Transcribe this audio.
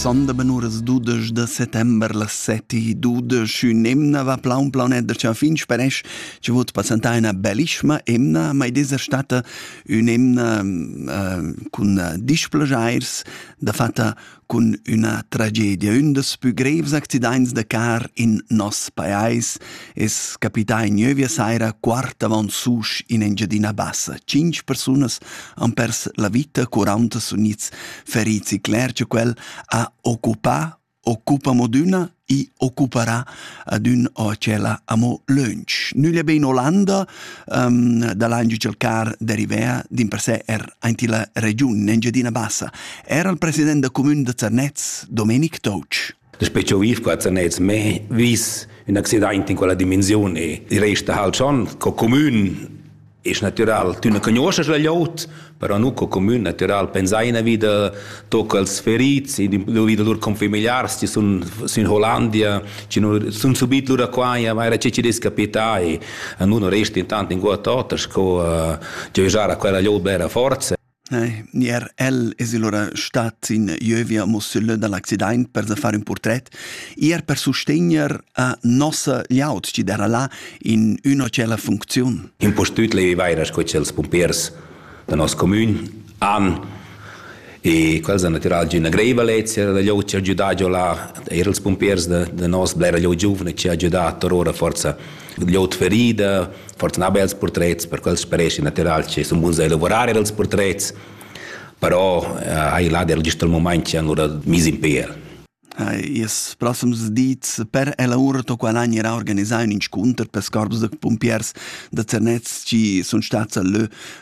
Sonda ben uras dudesch da settember las seti dudesch ün emna va plaun planet da cha fin speresch che vot passentà ina bellissima emna mai desa stata ün emna uh, cun uh, displagiairs da fatta cun üna tragedia ün des pü grevs accidaints da car in nos pajais es capità in gnövia saira quart avant susch in Engiadina Bassa. Cinq persunas han pers la vita, 40 sun its ferits e cler che quel ha occupà occupa modüna i occuperà ad ün o tschella amo lönch. Nüglia be in Olanda um, da langi cercar de Rivea din per sé er aint la regiun in Engiadina Bassa. Era il president da comune de Zernez, Domenic Touch. Daspö ch'eu viv qua zanez mê vis ün accidaint in quella dimensiun e i resta halt schon co cumün es natüral. Tü na cugnuoschast la glieud, però nu co cumün natüral. Pensaina vi da tocals ferits, vi da lur confamiliars chi sun sün Hollandia, chi nu sun subit lura qua e vaira che chi dess capità e nu nu resta intant inguott oter sco giöjar a quella glieud bella forza. Ne, er el es lura stat in jövia mussüllö da l'accidaint per sa far ün purtret, eir per sustegner a nossa gliaud chi d'eira là in üna tschella funcziun. Impustüt leivaira sco cha'ls pumpiers da nos comün han e quels han natüral giü üna greiva lezia da glieud chi ha giudà giò là, eir ils pumpiers da da nos blera glieud giuvna chi ha giudà torora forza gl'out ferida, fortuna ha bels purtrets per quels speresci natural che sun buns a elavurar els purtrets, però eh, hai là der gist al moment che han ora mis in pel. Ils proxims dis per elaur to qual an era organisà ün inscunter per scorbs da pumpiers da Zernez chi sun stats a lö